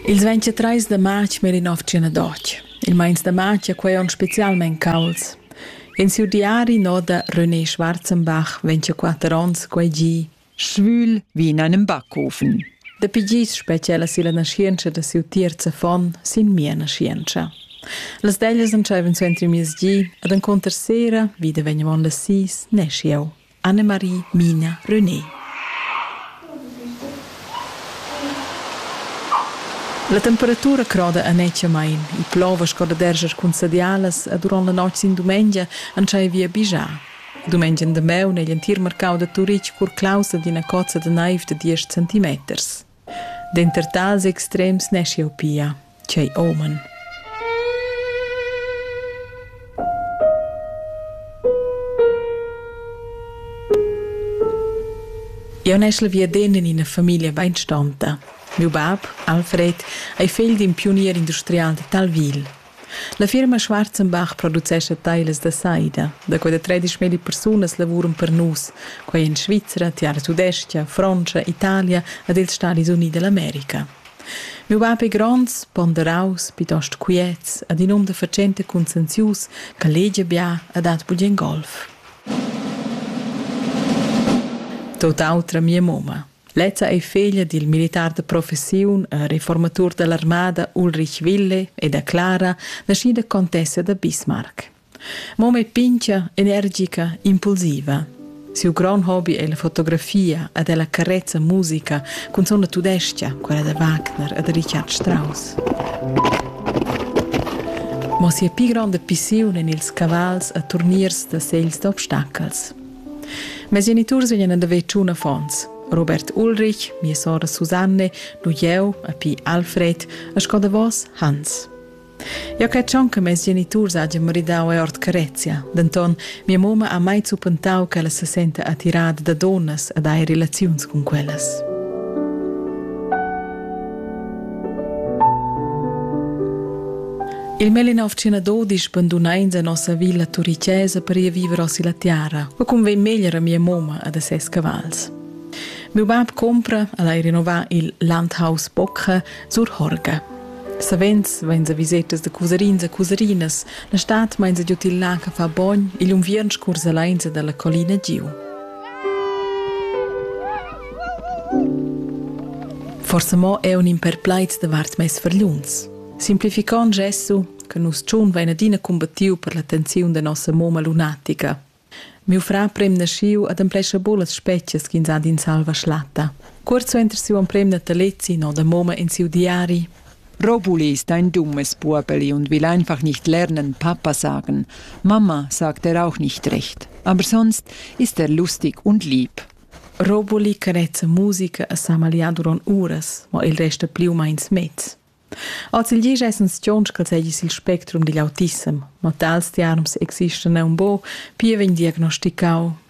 Ils 23 da march Melinovtgina d'och. Il meins da march è quei onn specialmein cauls. In siu diari noda René Schwarzenbach 24 onns quei gi. Schwül wie in einem Backofen. Dapi gis speciala silla naschientscha da siu tiers affon sin mia naschientscha. Las deglias entscheivan suenter il miez gi ed enconter sera, vida vegnevon las sis, neschi eu. Annemarie Mina René. La temperatura croda annetschamain, il plover sco da derscher cun sadialas e durant la notg sin dumengia entschai via bigiar. Dumengia damaun è l'entir marcau da Turitg curclaus ad ina cozza da naiv da diesch centimeters. Denter tals extrems neschiu pia quei uman. Eu neschel viaden in ina famiglia beinstanta. Miu bab, Alfred, ei fegl d'in pionier industrial de Talville. La firma Schwarzenbach producescha tailas da saida. Da quella 13 milli persunas lavuran per nus, quai en Svizra, Tiara Tudestga, Frontscha, Italia ed ils Stadis Unidi d'America. Miu bab ei gronds, ponderaus, pietost quiets ed in um da fatschenta conscienzius che legia bia e dat bugen golf. Tot autra mia mumma. Lezza ei feglia dil militar de professiun, reformatur dell'armada Ulrich Wille e da Clara, naschida contessa da Bismarck. Mom è pincha, energica, impulsiva. Siu grand hobby è la fotografia ed è la carezza musica cun sona tudestia, quella da Wagner e da Richard Strauss. Ma sia pli grande pissiun en ils cavals e turniers da segls d'obstacels. Mes geniturs vegnan ad haver tschun affons. Robert Ulrich, mia sora Susanne, nu jeu, a pi Alfred, a sco davos Hans. Eu cred schon che mes geniturs hajan maridau e ord carezia, denton mia moma ha mai zuppentau che ella se senta attirada da donnas ed ha relaziuns cun quellas. Il Melinaufcina dodisch bandunains a nossa villa turichesa per ir viver osi la tiara, ma cum vegn meglier a mia moma ad a ses cavals. Meu bab compra ad hai rinnovar il Landhaus Bocca sur Horga. Savens vain sa visetas da cusarins a cusarinas, la stat main sa giut il lac a far bogn e l'unviern scurs allein da la collina giu. Forsa mo eu nin per plaids davart meis fargliuns. Simplificond gesso, che nus tschun vain adina combattiu per la tensiun da nossa moma lunatica. Miu fra prem nasciu ad amplescha bolas specchias ch'ins ha d'in salva schlatta. Cuort suenter siu emprem natalezi no da moma in siu diari, Robulis dein dummes Burbeli und will einfach nicht lernen, Papa sagen. Mama sagt er auch nicht recht. Aber sonst ist er lustig und lieb. Robuli carezza musica a sa magliar durant uras, ma il resta pli u meins mez. Als il gis essen stions che segis il spectrum digl autissem, ma tals tiarms existan aunc bo, pia vegn diagnosticau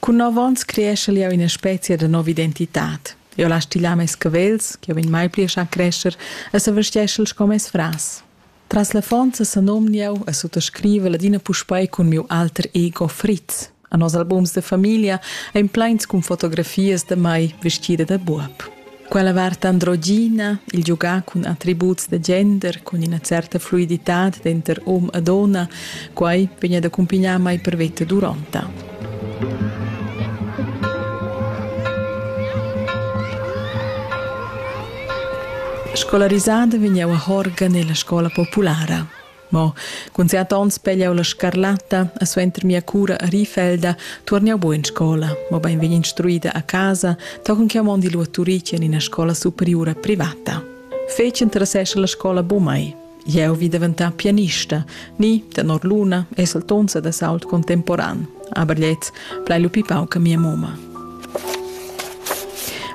Cun nov onns creeschel jeu ina specia da nova identitad. Eu las stilar mes cavels, ch'jeu vegn mai pli a schar crescher e s'avesteschel sco mes fras. Tras l'affonza senomn jeu e suttascriva ladina puspei cun miu alter ego Fritz. A nos albums da famiglia ein pleins cun fotografias da mai vestida da buob. Quella vart androgina, il giugar cun attributs da gender, cun ina certa fluiditad denter hom e donna, quai vegn ad accumpignar mai per veta duronta. Scolarisada vegn jau a Horgan nella scola populara. Mo cun siat onns pegliau la scarlatta e suenter mia cura a Rifelda tuorn jau buc in scola, mobein vegn instruida a casa, tochen che mondi lu a Turic en ina scola superiura privata. Fetg interessescha la scola bu mai. Jeu vi daventar pianista, ni, tenor Luna, esaltonza da sault contemporan, aber jetzt plai lu pipau che mia moma.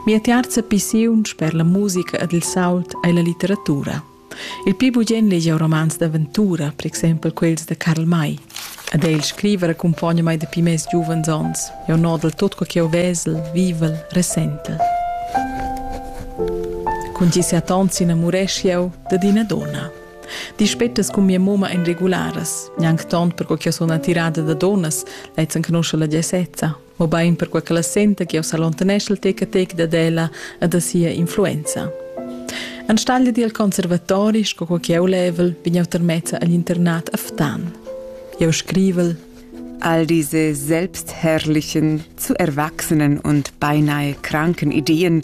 Mia tiarza pissiun per la musica ed il sault ei la litteratura. Il pli bugen legia romans d'aventura, per exempel quels de Karl May. Ad el scriver accumpogna mai dapi mes giuvens onns. Eu nodel tot co che eu vesel, vivel, ressentel. Cun gi set onns innamuresch eu dad ina donna. Dispettas cun mia moma en regularas, gnanc tont per co che sun attirada da donnas, lezzen conosce la gesezza. mobein perquei che la senta che s'allontanescha il tec a tec dad ella e da sia influenza. Enstagl dil conservatori, sco quei che eu level, bin eu termezza agl internat a Ftan. Eu scrivel All diese selbstherrlichen, zu erwachsenen und beinahe kranken Ideen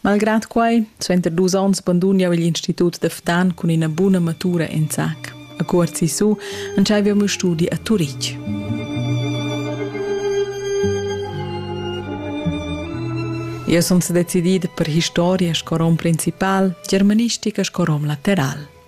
Malgrad quai, suenter dus onns bandun jau igl institut da Ftan cun ina buna matura en sac. A cuort sisu entschaiva meu studi a Turitg. Eu sun sedecidida per historia sco rom principal, germanistica sco rom lateral.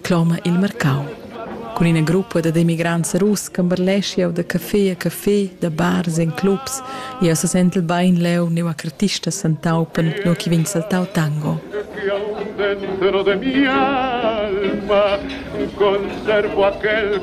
cloma il marcau. Cun ina gruppa dad emigrants russ camberlesch jau da café a café, da bars en clubs. Jau sa sentel bain leu neu a cartista santaupen, nua che vegn saltau tango. de mi alma, conservo aquel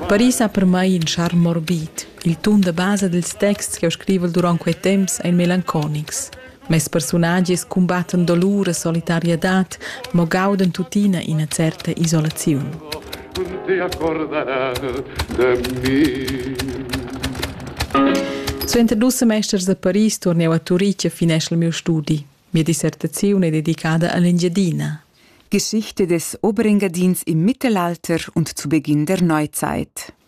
Paris ha per mai in charme morbid. Il tun da basa dels texts che ho scrivo durant quei temps ein melanconics. Mes persunagias cumbattan dolur e solitariadad, mo gaudan tuttina ina certa isolaziun. Cun ti accordanar de mi. Suenter dus semesters a Paris tornau a Turitg e finesch il miu studi. Mia dissertaziun è dedicada all'Engiadina. Geschichte des Oberingadins im Mittelalter und zu Beginn der Neuzeit.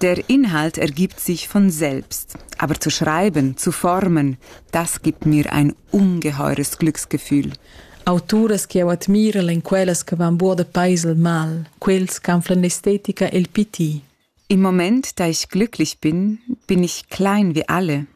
Der Inhalt ergibt sich von selbst. Aber zu schreiben, zu formen, das gibt mir ein ungeheures Glücksgefühl. Auturas che eu admira en quellas che van buo da paes al mal, quels qu'anflan l'estetica e il piti. Im Moment, da ich glücklich bin, bin ich klein wie alle.